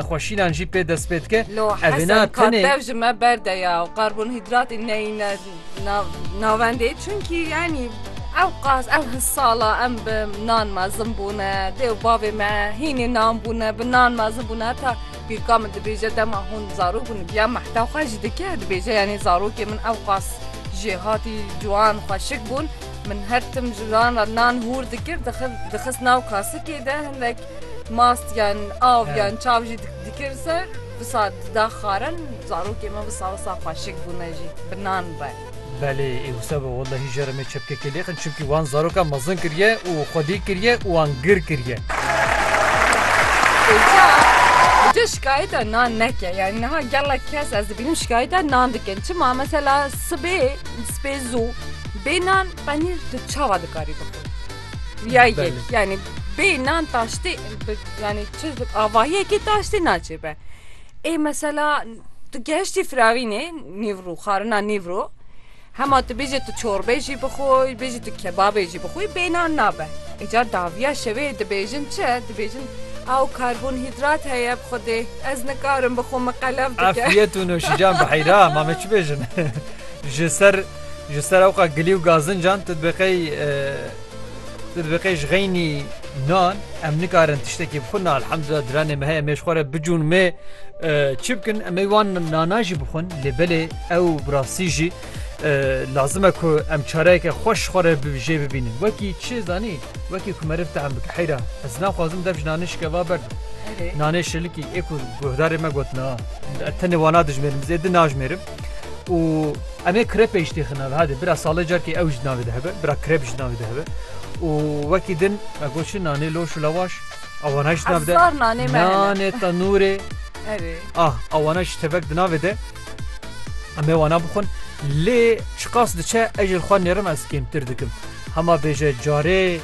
nexweşînan jî pê dest pê dike. Lo Hesen Katev ji me berde ya û karbonhîdratê neyîne navendê çunkî yanî ew qas ew hi sala em bi nan mezin bûne dê û bavê me hînê nan bûne bi nan mezin bûne heta pîrka min dibêje dema hûn zarok bûn giya mehta xwe ji dike dibêje yanî zarokê min ew qas jê hatî ciwan xweşik bûn min her tim ji wan re nan hûr dikir dixist nav kasikê de hindek Mast yan av yan çav jî dikir ser wisa dida xarin zarokê me wisa wisa xweşik bûne jî bi nan re. Belê ê wisa be wellahî jera me çepkekê lêxin çimkî wan zarokan mezin kiriye û xwedî kiriye û wan gir kiriye. Îca îca şikayeta nan neke yanî niha gelek kes ez dibînim şikayeta nan dikin çima mesela sibê spê zû bê nan penîr tu çawa dikarî bixwî. Ya yek Belê. yani bê nan taştê bi- yani çi avahiyekê taştê naçê be. Ê mesela tu geştî firarînê nîvro xarina nîvro hema tu bêjê tu çorbê jî bixwe bêjî tu kebabê jî bixwe bê nan nabe. Ê ca daviya şevê dibêjin çi dibêjin ew karbonhîdrat heye bi xwe dê ez nikarim bixwe min qelev dike. Afiyet û noşican bi heyra ma me çi bêjin. Ji ser Ji serewqa gilî û gazincan tu dibeqey tu dibeqey ji xeynî nan em nikarin tiştekî bixwin na elhamdullah diranê me heye em ê ji xwe re bicûn mê çi bikin em ê wan nana jî bixwin lê belê ew bi rastî jî lazim e ku em çareyeke xweş xwe re jê bibînin wekî çi zanî wekî ku meriv tehm bike heyra ez naxwazim dev ji nanê şikeva ber nanê şilikî ê ku guhdarê me gotina tenê wana dijmêrim zêde najmêrim û em ê krep ê jî têxin navê hadi bira salê carkê ew jî navê dihibe bira krep jî navê dihibe û wekî din me got çi nanê loş û lawaş awana jî navê de Hezar nanê me hene. nanê tenûrê Erê. ah awana jî tevek di navê de em ê wana bixwin lê çiqas diçe ez ji xwe nêrim ez kêmtir dikim hema bêje carê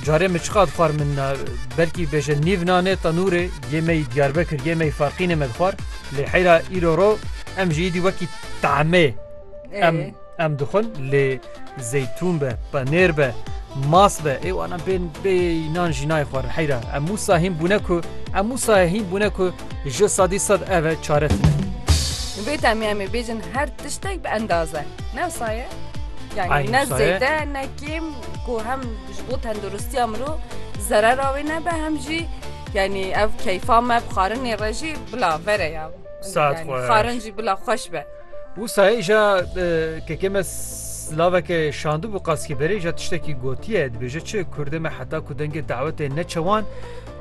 Carê min çiqat xwar min na belkî bêje nîv nanê tenûrê yê me yî Diyarbekir yê me yî Farqînê me dixwar lê heyra îro ro em jî îdî wekî tahmê em em dixwin lê zeytûn be penêr be mas be ê wana bên bê nan jî nayê xwar heyra em wisa hîn bûne ku em wisa hîn bûne ku ji sadî sad ev e çare tune Bê temî em ê bêjin her tiştek bi endaze ne wisa ye yani ne zêde ne kêm Ku hem ji bo tenduristiya mirov zerera wê nebe hem jî yanî ev keyfa me bi xarinê re jî bila vere ya. Saet xweş. Xarin jî bila xweş be. Wisa îja kekê me slaveke şandibû qaskî berê îja tiştekî gotiye dibêje çi Kurdê me heta ku dengê dawetê neçewan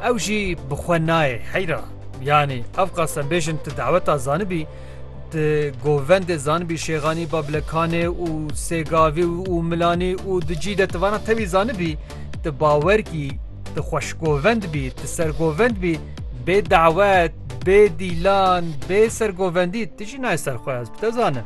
ew jî bi xwe nayê heyra. Yanî ev qasembêjin tu daweta zanibî Di govendê zanibî Şêxanî, Babilekanê û Sêgavî û Milanî û di cî de ti vana tevî zanibî, ti bawer kî, ti xweşgovend bî, ti sergovend bî, bê dawet, bê dîlan, bê sergovendî ti jî nayê ser xwe ez bi te zanim.